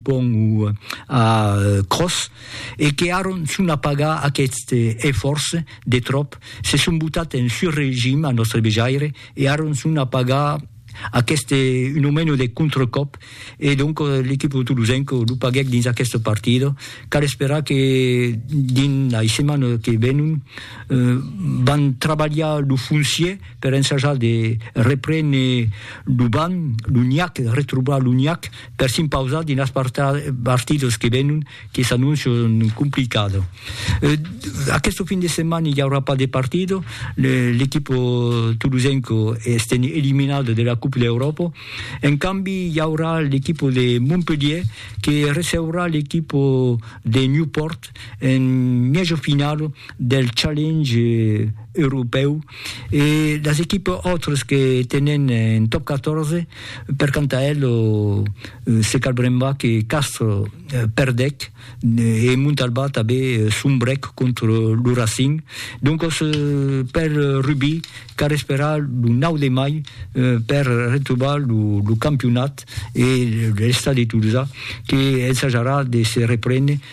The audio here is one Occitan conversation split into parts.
pont o a cròs, e que aron son a pagar aqueste efòrç de tròp, se son botat en sur regim a nòstre vejaire, e aron son a pagar aqueste un o meno de contracòp, e donc l'equip tolosenc lo paguèc dins aqueste partida, cal esperar que dins lei setmanas que venon van trabalhar lo foncier per ensajar de reprene lo banc, lo niac, retrobar lo niac, per s'impausar dins las partidas que venon que s'annoncian complicado. Aquesto fin de setmana i aurà pas de partido, l'equipo tolosenco estèn eliminado de la Coupe d'Europa, en cambi i aurà l'equipo de Montpelhier que receurà l'equipo de Newport en mièja finala del Challenge europèu e las equipas autras que tenen en Top 14 Per quant a el, se cal brembar que Castres perdèc e Montalbà tanben sombrèc contra lo Racing. Doncas, per Rubí, cal esperar lo 9 de mai per retrobar lo campionat e l'Estadi Tolosa que ensajarà de se reprene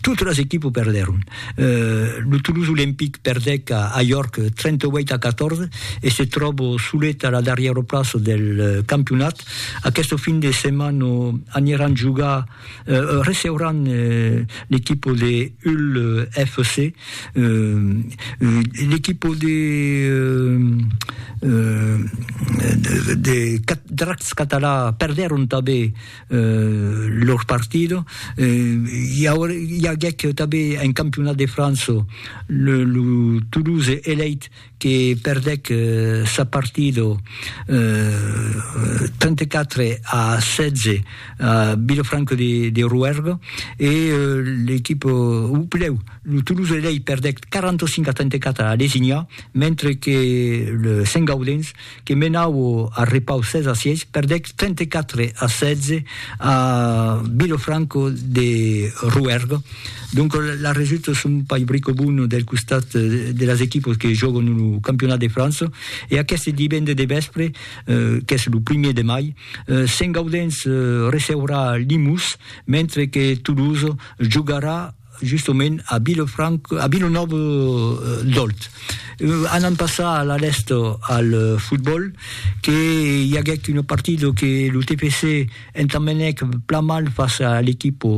Totes las equipes perdèron. Lo Toulouse Olympique perdèc a York 38 a 14 e se tròba solet a la darrièra plaça del campionat. Aquesta fin de setmana aniran jogar, receuràn l'equipa de Hull FC. L'equipa de Dracs Català perdèron tanben eh, lor partido, eh, i aguèc tanben en campionat de França lo, lo Toulouse Elite que perdèc sa partido eh, 34 a 16 a Vilafranca de, de Rouergue e l'equipe, o pleu, lo Toulouse Elite perdèc 45 a 34 a Lesignà, mentre que le Saint Gaudens que menaue a Repau 16 a 6, perdec 34 a 16 a Vilofranco de Rouergue. Donc la resulta son pas brico bona del costat de las equipos que jòguen lo Campionat de França e aqueste divende de vèspre, qu'es lo primièr de mai, Sent-Gaudens receurà Limús, mentre que Toulouse jogarà justement a Vilefranca, a Vilanòva d'Òlt. Anam passar a la rèsta al fotbòl, que i aguèc una partida que lo TFC entambenèc plan mal fàcia a l'equipa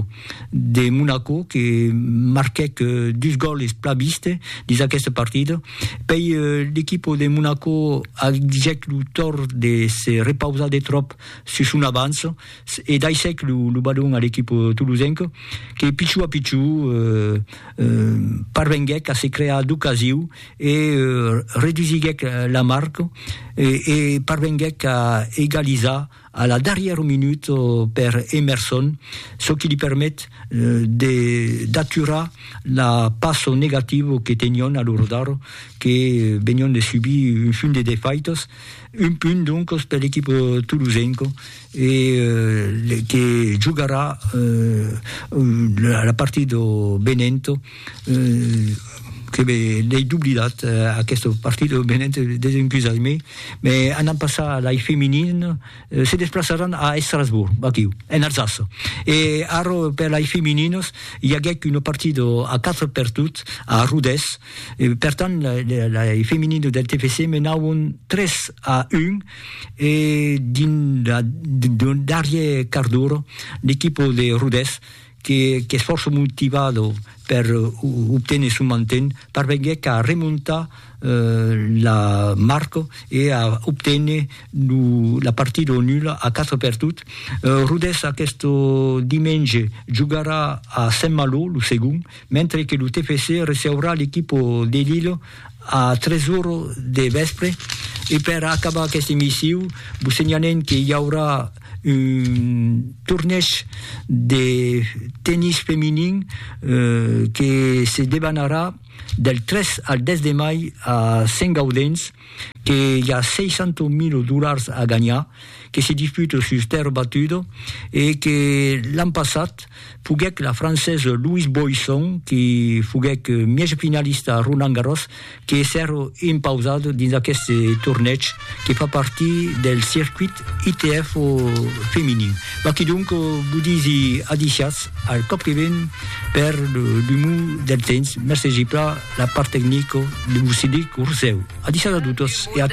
de Monaco, que marquèc dus gòles plan viste dins aquesta partida. Pei l'equipa de Monaco agèc lo tòrt de se repausar de tròp sus son avança, e daissèc lo balon a l'equip tolosenc que pichou a pichou parvenguèc a se crear d'ocasiu e redusiguèc la marc e parvenguèc a egalizar a la darrièra minut per Emerson, çò qui li permet d'aturar la passo negativa que tenion a lo rodar que venion de subir un funt de defaitas, un punt doncas per l'equip tolosenc. e que jogarà la partida do Benento que l'ai doblidat aquesta partida do Benento desencusatz-me me anam passar a lei feminin se desplaçaràn a Estrasbourg aquiu en Alsaça e ara per lei femininas i aguèc una partida a 4 per tot a Rodés e per tant lei femininas del TFC menàvon 3 a 1 e dins la darrier quart d'ora l'equipo de Rodés qu'es fòrça motivado per obténer son manten parvenguèc a remontar la marca e a obténer la partida o nula a 4 per tot. Rodés aquest dimenge jogarà a Saint-Malo, lo segond, mentre que lo TFC receurà l'equipo de Lille A tres ora de vèspre. E per acabar aqueste emissiu, vos senhalem que i aurà un tornèsh de tennis feminin que se debanarà del 3 al 10 de mai a Sentgaudens, que i a 600.000 dolars a ganhar, que se disputa sus tèrra batuda e que l'an passat Foguèc la francesa Louise Boisson que foguèc mièja finalista a Roland Garros que èsser impausada dins aqueste tornèg que fa partir del circuit ITF feminin. Maquidonc, vos disi adisiatz al còp que ven per l'umor del temps. Mercegi plan la part tecnica de vos cedir lo rosèu. Adisiatz a totas e a tots.